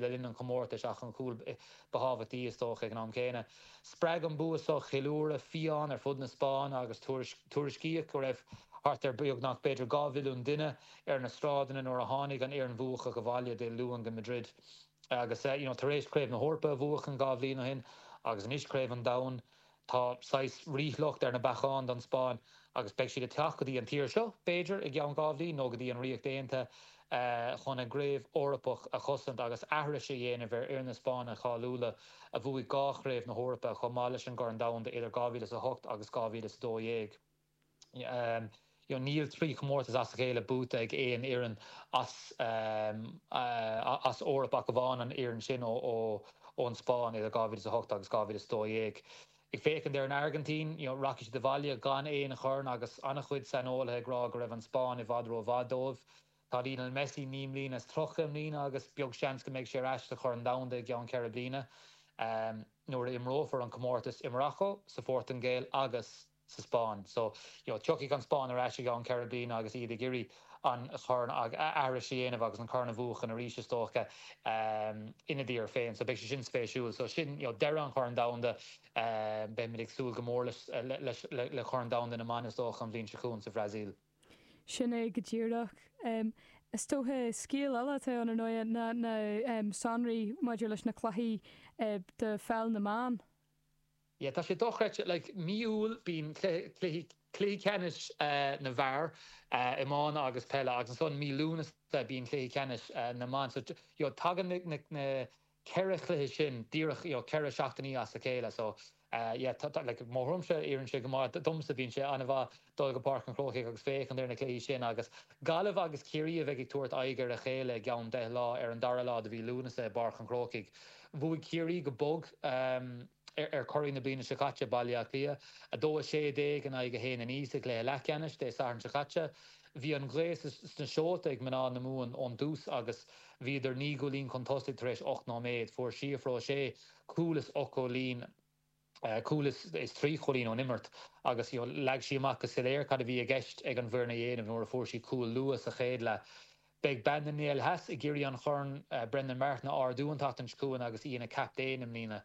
le linn an chomórtais ach an cúl ba thábhachtaí is dócha ag an am céanna. Spreag an bua seo ceiliúradh fiáin ar fud na Spáinne agus tuairiscíodh go raibh thart ar beagnach b'fhéidir dhá mhilliún duine ar na sráideanna nuair a tháinig an fhoireann bhuacach abhaile Dé Luain go Madrid agus tar éis Craobh na hEorpa a bhuachan dhá bhliain ó shin agus anois Craobh an Domhain Tá saghas ríshliocht ar na bacáin don Spáinn agus beidh siad ag teacht go dtí an tír seo, b'fhéidir, i gceann dhá bhliain nó go dtí an Ríocht Aontaithe chun a gcraobh Eorpach a chosaint agus aithris a dhéanamh ar fhir na Spáinne cháiliúla a bhuaigh dhá chraobh na hEorpa chomh maith leis an gCorn Domhanda idir 2008 agus 2012. Níl trí chomórtas as a chéile buaite ag aon fhoireann san Eoraip ach amháin an fhoireann sin ón Spáinn idir 2008 agus 2012. Ag féachaint ar an Airgintín, rachaidh siad abhaile gan aon chorn agus an-chuid saineolaithe ag rá go raibh an Spáinn i bhfad rómhaith dóibh. Tá Lionel Messi naoi mbliana is tríocha i mbliana agus beag seans go mbeidh sé ar ais sa Chorn Domhanda i gceann ceithre bliana nuair a imreofar an comórtas i Maracó, sa Phortaingéil agus. sa Spáinn. So, you know, tiocfaidh an Spáinn ar ais i gceann ceithre bliana agus iad ag iarraidh an chorn a aithris a dhéanamh agus an corn a bhuachan arís, is dócha, ina dtír féin. So, beidh sé sin spéisiúil. So, sin, you know, deireadh an Chorn Domhanda. Beimid ag súil go mór leis, leis, le Corn Domhanda na mBan, is dócha, an bhliain seo chugainn sa Bhrasaíl. Sin é go díreach. Is dócha, scéal eile atá ann, ar ndóigh, ná na sonraí maidir leis na cluichí do pheil na mban. Yeah, tá sé dochreidte. Like, mí Iúil bíonn cluichí, cluichí ceannais na bhfear, iomána agus peile, agus ansan mí Lúnasa bíonn cluichí ceannais na mban. So, you know, tagann na, na ceithre chluiche sin díreach, you know, ceithre seachtainí as a chéile. So, yeah, tá, tá, like, mo thuairimse, oireann sé go maith domsa. Bíonn sé an-mhaith. dul go Páirc an Chrócaigh agus féachaint ar na cluichí sin agus Gaillimh agus Ciarraí a bheidh ag tabhairt aghaidh ar a chéile i gceann deich lá ar an dara lá de mhí Lúnasa i bPáirc an Chrócaigh. Bhuaigh Ciarraí go bog ar churaidh na bliana seo caite, Baile Átha Cliath, 2 16 in aghaidh 1 9 sa gcluiche leathcheannais Dé Sathairn seo caite. Bhí an ghaoth sna seolta ag mná na Mumhan ón dtús agus bhíodar naoi gcúilín chun tosaigh tar éis ocht nóiméad. Fuair Síofra O'Shea cúl is ocht gcúilín. cúl is trí chúilín ón imirt agus you know leag sí amach go soiléir cad a bhí i gceist ag an bhfoireann a dhéanamh nuair a fuair sí cúl luath sa chéad leath. Beidh bean na nGael Theas ag iarraidh an Chorn Brendan Martin a ardú an tseachtain seo chugainn agus í ina captaen i mbliana.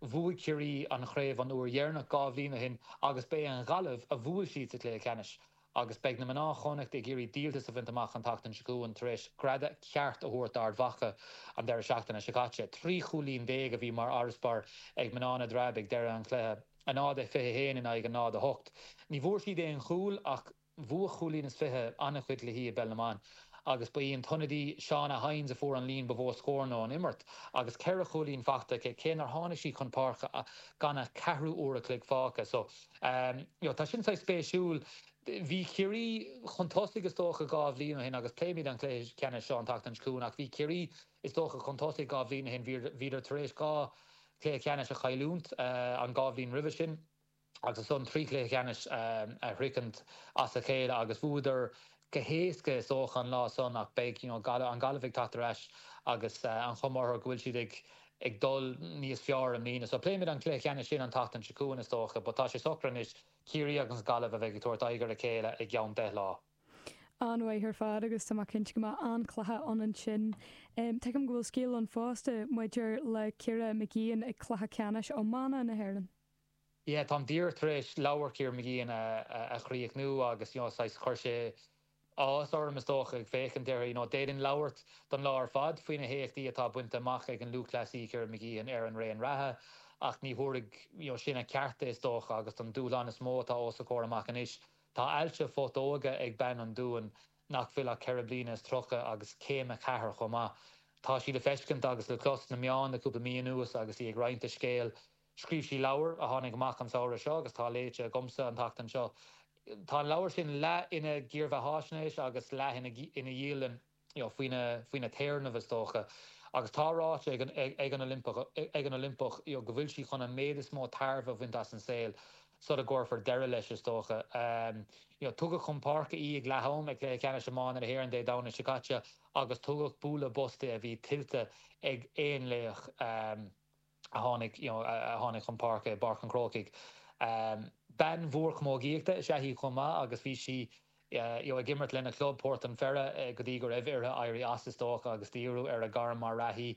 Bhuaigh Ciarraí an chraobh an uair dheireanach dhá bhliain ó shin agus ba é an Ghaillimh a bhuail siad sa chluiche ceannais. Agus beidh mná Chonnacht ag iarraidh díoltas a bhaint amach an tseachtain seo chugainn tar éis greadadh ceart a thabhairt d'Ard Mhacha an deireadh seachtaine seo caite. Trí chúilín déag a bhí mar fharasbarr ag mná na dTreabh ag deireadh an chluiche, náid a fiche haon in aghaidh náid a hocht. Ní bhfuair siad aon chúl ach bhuaigh cúilín is fiche an-chuid cluichí i bpeil na mban agus ba í an t-ionadaí Shauna Hynes a fuair an líon ba mhó scóranna ón imirt agus ceithre chúilín faighte aici, cé nár tháinig sí chun páirce gan ach ceathrú uair a chloig fágtha. You know, tá sin saghas spéisiúil. Bhí Ciarraí chun tosaigh is dócha dhá bhliain ó shin agus pléimid an cluiche ceannais seo an tseachtain seo chugainn ach bhí Ciarraí is dócha chun tosaigh dhá bhliain ó shin, bhíodar tar éis dhá chluiche ceannais a chailliúnt an dhá bhliain roimhe sin agus ansan trí chluiche ceannais a shroichint as a chéile agus bhuadar go héasca is dócha an lá san ach beidh you know an Ghaillimh ag teacht ar ais agus an chuma orthu go bhfuil siad ag ag dul níos fearr i mbliana so pléimid an cluiche ceannais sin an tseachtain seo chugainn is dócha but tá sé socra anois Ciarraí agus an Ghaillimh a bheidh ag tabhairt aghaidh ar a chéile i gceann deich lá. An-mhaith ar fad agus tá mé cinnte go mbeidh an-chluiche ann ansin. Tuigim go bhfuil scéal ann fosta maidir le Ciara Mageean ag cluiche ceannais iomána na hÉireann. yeah táim díreach tar éis leabhar Ciara Mageean a chríochnú agus you know saghas chuir sé áthas orm is dócha ag féachaint air you know d'fhéadfainn labhairt don lá ar fad faoi na héachtaí atá bainte amach ag an lúthchleasaí Ciara Mageean ar an raon reatha ach ní thabharfadh you know sin a ceart di is dócha agus don dúshlán is mó atá os a comhair amach anois tá ailse putóige ag bean an Dúin nach bhfuil ach ceithre bliana is tríocha agus céim a ceathair chomh maith tá sí le feiscint agus le clos sna meáin le cúpla mí anuas agus í ag roinnt a scéil Scríobh sí leabhar a tháinig amach an samhradh seo agus atá léite agamsa an tseachtain seo. Tá an leabhar sin leath ina dhírbheathaisnéis agus leath ina dhialann, faoina téarnamh, is dócha. Agus tá ráite ag an Oilimpeach go bhfuil sí chun an méid is mó tairbhe a bhaint as an saol, sula gcuirfear deireadh leis, is dócha. Tugadh chun páirce í ag leath-am ag Cluiche Ceannais Iomána na hÉireann Dé Domhnaigh seo caite agus tugadh bualadh bos di a bhí tuillte ag aon laoch. a tháinig you know a tháinig chun páirce i bPáirc an Chrócaigh. Bean mhór camógaíochta is ea í chomh maith agus bhí sí you know ag imirt lena club, Port an Pheire, go dtí go raibh uirthi éirí as is dócha agus díriú ar a gairm mar reathaí.